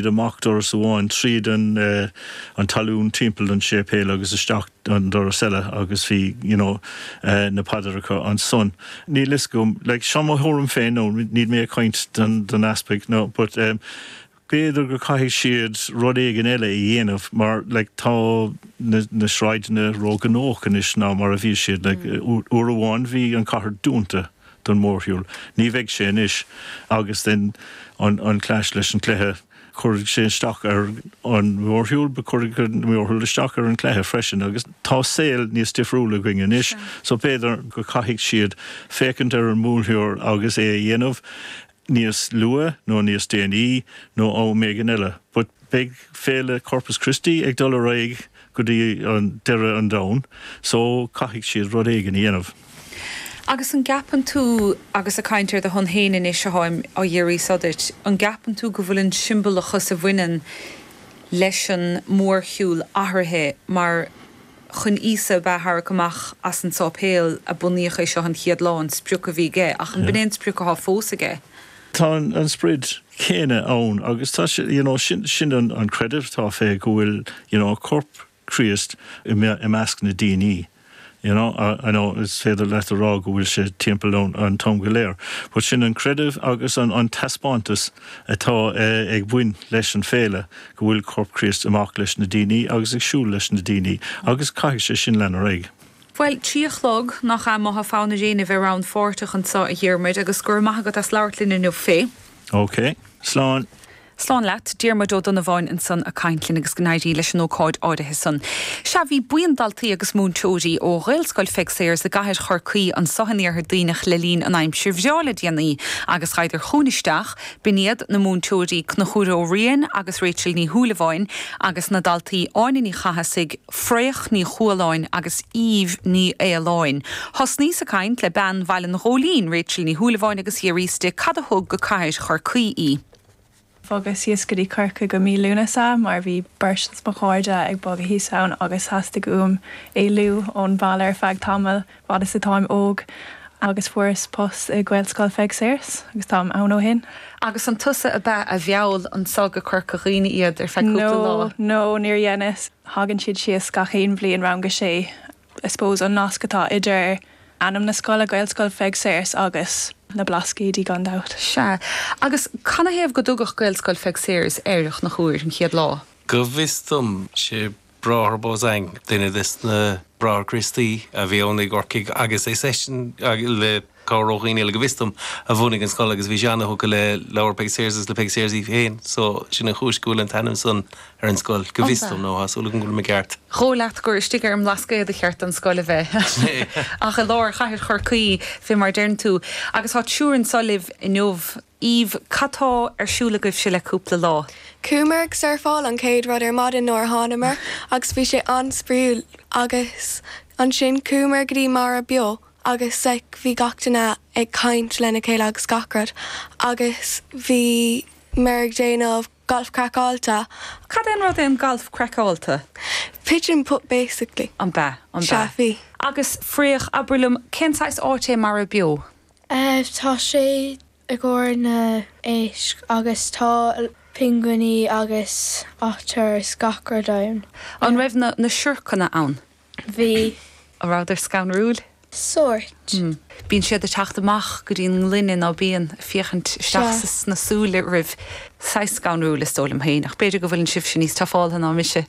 Bhí amach doras amháin tríd an salún timpeall don séipéal agus isteach an doras eile agus bhí you know na paidreacha ansan. Níl fhios agam like seo mo thuaraim féin no níl mé ag caint don easpaig no but eh b'fhéidir go caithfidh siad rud éigin eile a dhéanamh mar like tá na sráideanna ró ghnóthach anois ná mar a bhí siad like uair amháin bhí an cathair dúnta. don mhórshiúl. Ní bheidh sé anois agus then an clash leis an cluiche cuirfidh sé isteach ar an mhórshiúl but cuirfidh an mhórshiúl isteach ar an cluiche freisin agus tá saol níos difriúla againn anois so b'fhéidir go caithfidh siad féachaint ar an mórshiúl agus é a dhéanamh níos lugha nó níos déanaí nó am éigin eile but beidh féile Corpus Christi ag dul ar aghaidh go dtí an deireadh an domhan so caithfidh siad rud éigin a dhéanamh. Agus an gceapann tú, agus ag caint ar do shon féin anois atáim á iarraidh so dhíot, an gceapann tú go bhfuil an siombalachas a bhaineann leis an mórshiúl athraithe mar, Chun Íosa a tharrac amach as an sáipéal a bunaíodh é seo an chéad lá an sprioc a bhí aige. Ach an b'in é an sprioc athá fós aige? Tá an sprioc céanna ann agus tá sé, you know, sin, sin an creideamh atá fé go bhfuil, you know, corp Chríost i measc na daoiní, you know, I know is féidir leat a rá go bhfuil sé timpeall ann an t-am go léir but sin an creideamh agus an taispeántas atá ag baint leis an féile go bhfuil Corp Críost amach leis na daoine agus ag siúl leis na daoine, agus caithfidh sé sin leanúint ar aghaidh. Bhuel, trí a chlog, nach ea? Má tá fonn ar éinne a bheith rannpháirteach anso, a Dhiarmuid, agus go raibh maith agat as labhairt linn inniu fé. OK. Slán. Slán leat. Diarmuid Ó Donnabháin ansan a' caint linn agus go n-éirí leis an ócáid áirithe san. Sea, bhí buíon daltaí agus múinteoirí ó Ghaelscoil Pheig Sayers i gCathair Chorcaí anso in iarthar Duibhneach le linn na haimsire bhreá le déanaí agus ghaibheadar chugainn isteach, B'in iad na múinteoirí Conchúr Ó Riain agus Rachel Ní Shúilleabháin agus na daltaí Áine Ní Chathasaigh, Fraoch Ní Chualáin agus Aoibh Ní Fhaoláin. Thosnaíos ag caint le bean Bhaile an Ghóilín, Rachel Ní Shúilleabháin agus dh'fhiafraíos di cad a thug go Cathair Chorcaí í. Bhogas síos go dtí Corcaigh i mí Lúnasa mar bhí beirt dos mo chairde ag bogadh thíos ann agus theastaigh uaim éalú ón bhaile ar feadh tamaill. fad is atáim óg agus fuaireas post i Gaelscoil Pheig Sayers agus táim ann ó shin. Agus an tusa ab ea a mheall anso go Corca Dhuibhne iad ar feadh cúpla lá? No, no, níor dheineas. Thagann siad síos gach aon bhliain, rang a sé. I suppose an nasc atá idir ainm na scoile, Gaelscoil Pheig Sayers, agus na Blascaoidí gan dabht. Sea. Agus canathaobh gur tugadh Gaelscoil Pheig Sayers air in aon chor an chéad lá? Go bhfios dom, sé Bráthair Beausang, duine des na Bráithre Críostaí a bhí ann i gCorcaigh agus is eisean, le cabhair ó dhaoine eile go bhfios dom a bhunaigh an scoil agus bhí sé ana-thugtha le leabhair Peig Sayers agus le Peig Sayers í féin so sin an chúis go bhfuil an t-ainm san ar an scoil, go bhfios dom, nó tá súil agam go bhfuil mé ceart. Ba dhóigh leat gur istigh ar an mBlascaod ba cheart don scoil a bheith ach i lár chathair Chorcaí fé mar a deireann tú agus tá triúr anso libh inniu. Aoibh, Cad tá ar siúl agaibhse le cúpla lá? Chuamar ag surfáil an chéad rud ar maidin nuair a thánamar agus bhí sé an-spraoiúil agus ansin chuamar go dtí Mara Beo agus like bhí gach duine ag caint lena chéile agus gach rud agus bhíomar ag déanamh Galf Craiceáilte. Cad é an rud é an Galf Craiceáilte? Pitch and putt basically. An b'ea? An b'ea? Sea bhí. Agus Fraoch, abair liom, cén saghas áit é Mara Beo? Tá sé i gcomhair na héisc agus tá pinguiní agus otter is gach rud ann. An raibh na siorcanna ann? Bhí. An rabhadar scanrúil? Sóirt. Bíonn siad ag teacht amach go dtí an ngloine nó bíonn ag féachaint isteach sna súile roimh. Saghas scanrúil is dóigh liom féin ach b'fhéidir go bhfuileann sibhse níos tufáilte ná mise.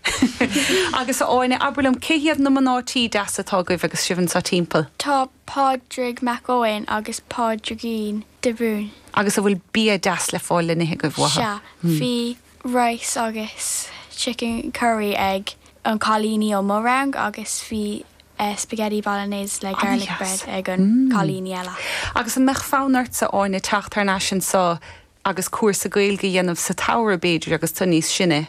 Agus a Áine, abair liom, cé hiad na mná tí deasa atá agaibh agus sibh anseo timpeall? Tá Pádraig Mac Eoin agus Pádraigín de Brún. Agus a bhfuil bia deas le fáil le n-ithe agaibh uathu? Sea, bhí rice agus chicken curry ag an cailíní ó mo rang agus bhí spaghetti bolognese le garlic bread ag an cailíní eile. Agus an mbeadh fonn ortsa, Áine, teacht thar n-ais anseo agus cúrsa Gaeilge a dhéanamh sa tsamhradh, b'fhéidir, agus tú níos sine?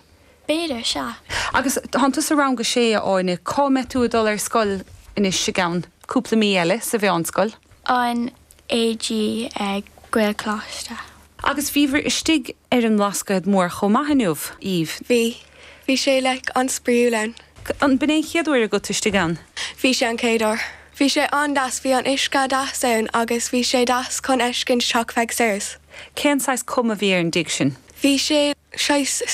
B'fhéidir, sea. Agus tánn tú sa rang a sé, a Áine. Cá mbeidh tú ag dul ar scoil anois i gceann cúpla mí eile? Sa mheánscoil? An AG ag Gaelcholáiste. Agus bhíobhair istigh ar an mBlascaod Mór chomh maith inniu, Aoibh? Bhí. Bhí sé, like, an-spraoiúil ann. An b'in é an chéad uair agat istigh ann? Bhí sé an chéad uair. Bhí sé an-deas. Bhí an uisce deas ann agus bhí sé deas chun fheiscint Teach Pheig Sayers. Cén saghas cuma bhí ar an dtigh sin? Bhí sé saghas.